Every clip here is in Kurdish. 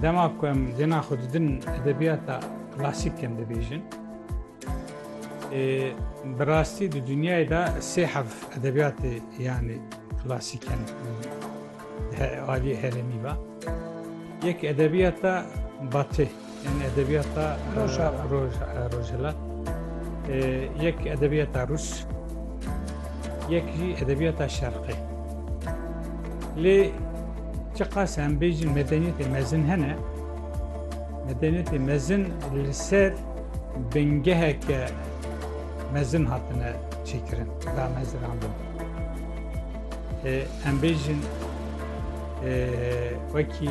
Dema ku em dêna xwe didin edebiyata klasîk em dibêjin. Bi rastî di dinyayê de sê hev edebiyatê yanî klasîk em aliyê herêmî ve. Yek edebiyata batê. Yani edebiyata Rojava. Roj, Rojava. E, yek edebiyata Rus, yek jî edebiyata Şerqê. Lê çi qas em bêjin medeniyetê mezin hene, medeniyetê mezin li ser bingeheke mezin hatine çêkirin, damezirandin. E, em bêjin e, wekî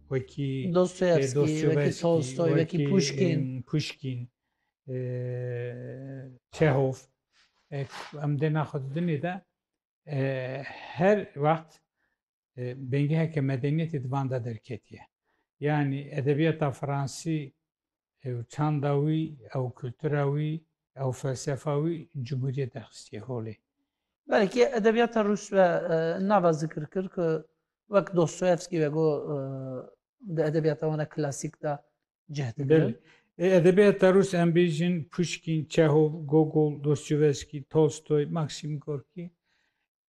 wekî Dostoyevskî, wekî Tolstoy, wekî Puşkîn, Çehof em dê naxwedidinê de her wext bêngeheke medeniyetê di van de derketiye. Yanî edebiyata fransî Ew çanda wî, ew kultura wî, ew felsefa wî cumhuriyet derxistiye holê. Belkî edebiyata rûs ve nava zikir kir ku wek Dostoyevskî ve got di edebiyata wan a klasîk de cih digirin. Belê. Edebiyata rûs em bêjin Puşkîn, Çehov, Gogol, Dostoyevskî, Tolstoy, Maksim Gorkî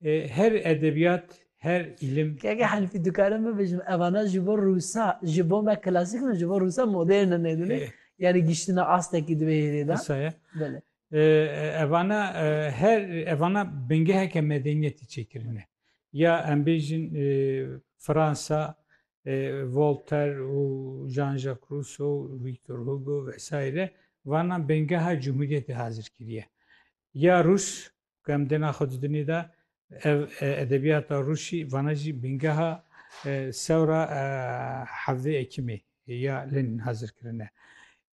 Her edebiyat, her ilim. Keke Hanifî dikarim bibêjim evana ji bo Rûsa, ji bo me klasîk in û ji bo Rûsa modern in nedinê. Yanî giştina astekî di vê hêrê de. Wisa ye. Belê. Evana her evana bingeheke medeniyetî çêkirine. Ya em bêjin Fransa Voltaire û Jean-Jacques Rousseau, Victor Hugo vesaire vana bengeha cumhuriyetê hazir kiriye. Ya Rûs ku em dê naxwedî dinê de ev edebiyata Rûsî vana jî bîngeha sewra hevdê Ekimê ya Lenin hazir kirine.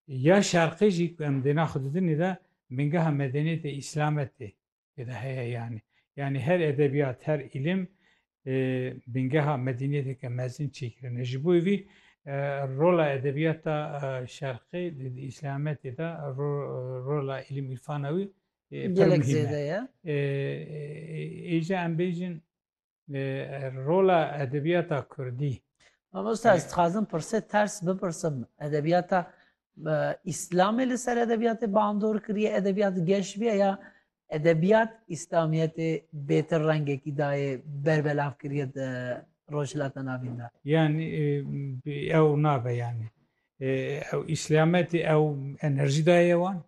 Ya Şerqê jî ku em dê naxwedî dinê de bîngeha medeniyetê Îslametê tê de heye yanî. Yanî her edebiyat, her îlim bingeha medeniyeteke mezin çêkirine. Ji bo vî rola edebiyata şerqê di îslametê de rola îlim îrfana wî pir muhîm e. Êje em bêjin rola edebiyata kurdî. Mamosta ez dixwazim pirsê ters bipirsim edebiyata îslamê li ser edebiyatê bandor kiriye edebiyat geş bîye ya Edebiyat İslamiyetê bêtir rengekî dayê berbelavkiriyê di Rojhilata Navîn de. Yanî ew nabe yanî ew İslametê ew enerjî dayê wan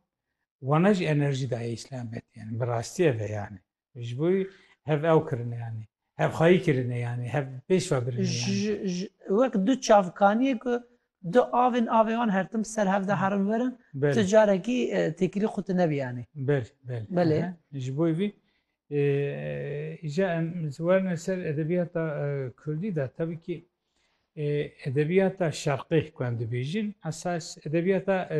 wana jî enerjî dayê İslametê yanî bi rastî ev e yanî ji bo hev ew kirine yanî Hevxwayî kirine yanî hev pêş ve birine yanî. Ji ji wek du çavkaniyê ku du avên avê wan her tim ser hev de herin vir in, tu Belê. carekî e, têkilî xwe tu nebî yanî. Belê, belê. Belê. Aha. Ji bo vî e, îja em ji werine ser edebiyata e, Kurdî de tevî kî e, edebiyata şerqî ku em dibêjin esas edebiyata e,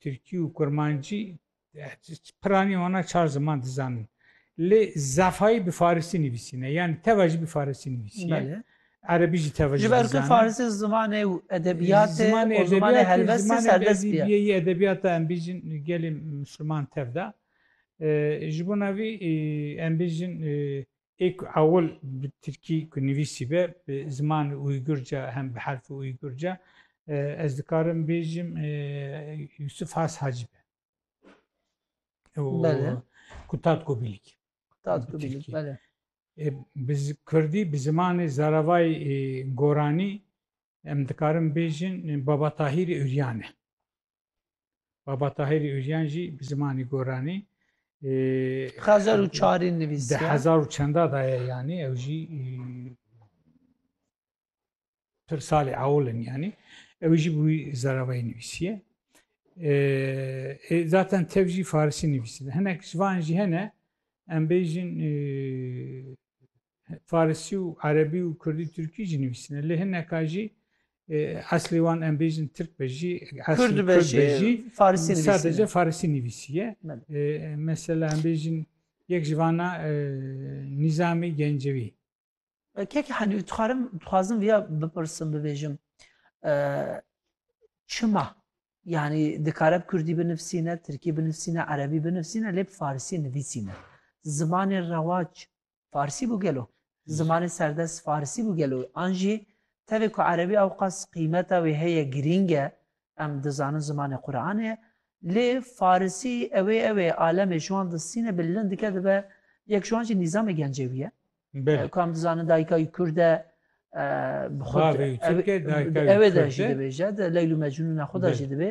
Tirkî û Kurmancî piranî wana çar ziman dizanin. Lê Zafayî bi Farisî nivîsîne yanî teva jî bi Farisî nivîsîye. Erebî jî teva jî Ji ber ku Farisî zimanê edebiyatê zimanê zimanê helbestê serbest bîye. Biyeyî edebiyata em bîjin gelê Musliman tev de. Ji bo navî em bîjin Ê ku ewil bi tirkî ku nivîsî be bi zimanê Uygurca hem bi herfê Uygurca ez dikarim bêjim Yusuf Has Hacî be. Bele. Kutat Gobilîk. Kutat Gobilîk bele. Bi Kurdî bi zimanê Zaravayî Goranî em dikarim bêjin Baba Tahîrê Uryan e. Baba Tahîrî Ûryan jî bi zimanî goranî xezer û çarî nivîsî di hezar û çenda daye yanî ew jî pir salê ewlin yanî ew jî bû zeravayî nivîsiye zaten tev jî farisî nivîsî hinek ji van jî hene em bêjin Farisî û erebî û kurdî turkî jî nivîsîne. Lê hineka jî eslê wan em bêjin tirk be jî eslê kurd be jî sadece farisî nivîsîye. Mesela em bêjin yek ji van a Nîzamî Gencewî. Kekê Helî dixwarim dixwazim vêya bipirsim bibêjim çima yanî dikare bi kurdî binivîsîne, tirkî binivîsîne, erebî binivîsîne lê bi farisî nivîsîne. Zimanê rewac Farsî bû gelo. Zimanê serdest farsî bû gelo. An jî tevê ku erebî ewqas qîmeta wê heye girîng e. Em dizanin zimanê Quranê ye. Lê farsî ew ê ew ê alemê ji wan distîne bi lin dike dibe yek ji wan jî nîzamê gencewî ye. Ku em dizanin dayika wî kurd e bi xwe di ew ê de jî dibêje di Leyl û Mecnûna xwe de jî dibê.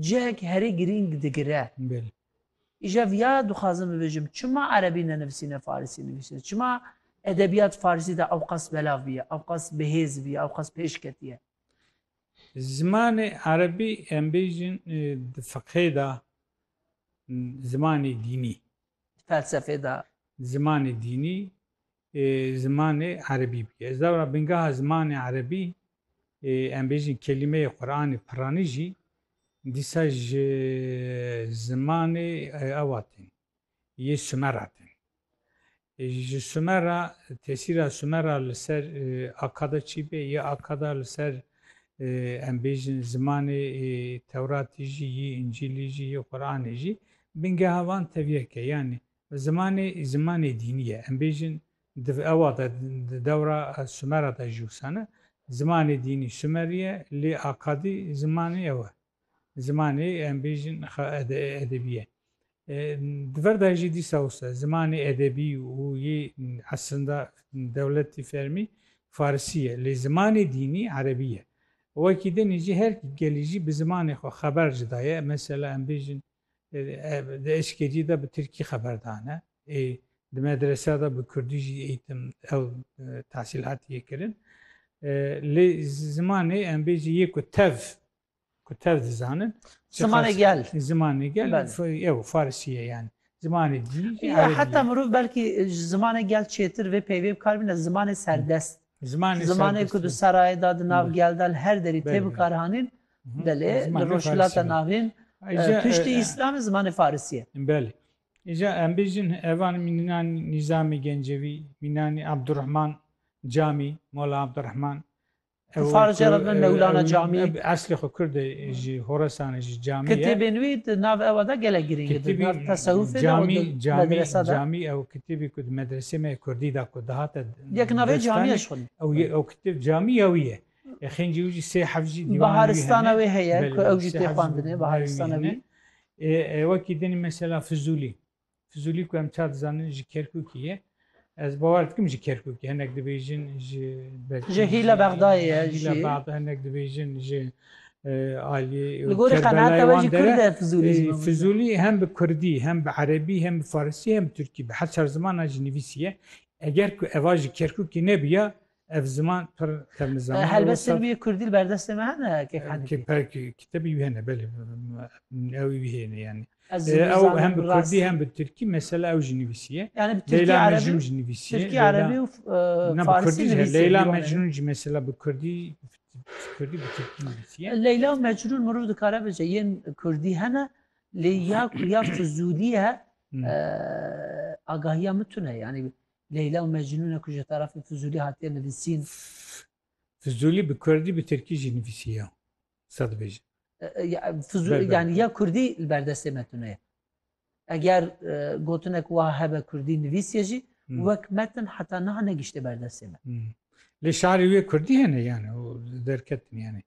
cihek herî girîng digire. Îşev ya dixwazim bibêjim çima erebî nenivîsîne farisî nivîsîne, çima edebîyat farisî de ewqas belav bîye, ewqas bihêz bîye, ewqas pêş ketîye. Zimanê erebî em bêjin di fiqhê de zimanê dînî. Felsefê de. Zimanê dînî zimanê erebî bûye. Ez lewra bingeha zimanê erebî ê em bêjin kelîmeyê Quranê piranî jî dîsa ji zimanê ewa tên, yê Sumer a tên. Ji Sumer a tesîra Sumer a li ser Akada çi bê, yê Akada li ser em bêjin zimanê Tewratî jî, yê Încîlî jî, yê Quranê jî, bingeha wan tevî yek e. Yanî Zimanê, zimanê dînî ye. Em bêjin di ewa de di dewra Sumera de jî wisa ne. Zimanê dînî Sumerî ye lê Akadî zimanê ew e. Zimanê em bêjin edebî ye. Di ver de jî dîsa wisa zimanê edebî û yê esrinda dewletî fermî Farisî ye lê zimanê dînî Erebî ye. Wekî din jî her gelî jî bi zimanê xwe xeber jî daye. Mesela em bêjin Di eşketî de bi tirkî xeber dane. Ê di medreseya de bi kurdî jî eğitim ew tahsîlatiye kirin. Lê zimanê em bêjî yê ku tev ku tev dizanin. Zimanê gel. Zimanê gel ew farisiye yani. Zimanê dî. Heta mirov belkî ji zimanê gel çêtir vê peyvê bikar bîne zimanê serdest. Zimanê ku di serayê de di nav gel de li her derî tê bikaranîn, belê li Rojhilata Navîn piştî Îslamê zimanê Farisî ye. Belê. Îja em bêjin evan Mînan Nîzamî Gencevî, Mînan Abdurehman Camî, Mola Abdurehman. Di Farisçe re bi Mewlana Camî. Eslê xwe kurd e ji Horesanê ji Camî ye. Kitêbên wî di nav ewa de gelek girîng e. Di nav tesewufê de û di medrese de. Camî ew kitêbê ku di medresê me yê kurdî de ku dihate. Yekna rê camîya ji xwe dî. Ew yê ew kitêb camîya wî ye. Xêncî wî jî sê heft jî dîwanê wî hene. Baharistana wê heye ku ew jî tê xwendinê baharistana wî. Wekî din mesela Fizulî. Fizulî ku em ça dizanin ji Kerkûkî ye. Ez bawer dikim ji Kerkûkî hinek dibêjin ji Ji hîla Bexdayê ye jî. Hîla Bexda hinek dibêjin ji aliyê Li gorî qenaata we jî Kurd e Fizulî. Fizulî hem bi Kurdî hem bi Erebî hem bi Farisî hem bi Tirkî bi her çar zimanan jî nivîsî ye. Eger ku eva ji Kerkûkî nebiya ev ziman pir xevni zaman. Helbet sermiyê Kurdî li berdestê me hene kek hene. Kitebî wî hene belê ew wî hêne yani. Ew hem bi Kurdî hem bi Tirkî mesela ew jî nivîsiye. Yani bi Tirkî Erebî jî nivîsiye. Tirkî Erebî û Farsî nivîsiye. Leyla Mecnûn jî mesela bi Kurdî Kurdî bi Tirkî nivîsiye. Leyla û Mecnûn mirov dikare bice yên Kurdî hene Lê ya ku ya fizûlî ye agahiya min tune yanî Leyla û Mecnûn e ku ji tarafê fizûlî hatiye nivîsîn. Fizûlî bi kurdî bi tirkî jî nivîsiye. Qisa dibêjin. Fizûlî yanî ya kurdî li ber destê me tune ye. Eger gotinek wiha hebe kurdî nivîsiye jî wek metin heta niha negişte berdestê me. Lê şarî wê kurdî hene yani derketin yani.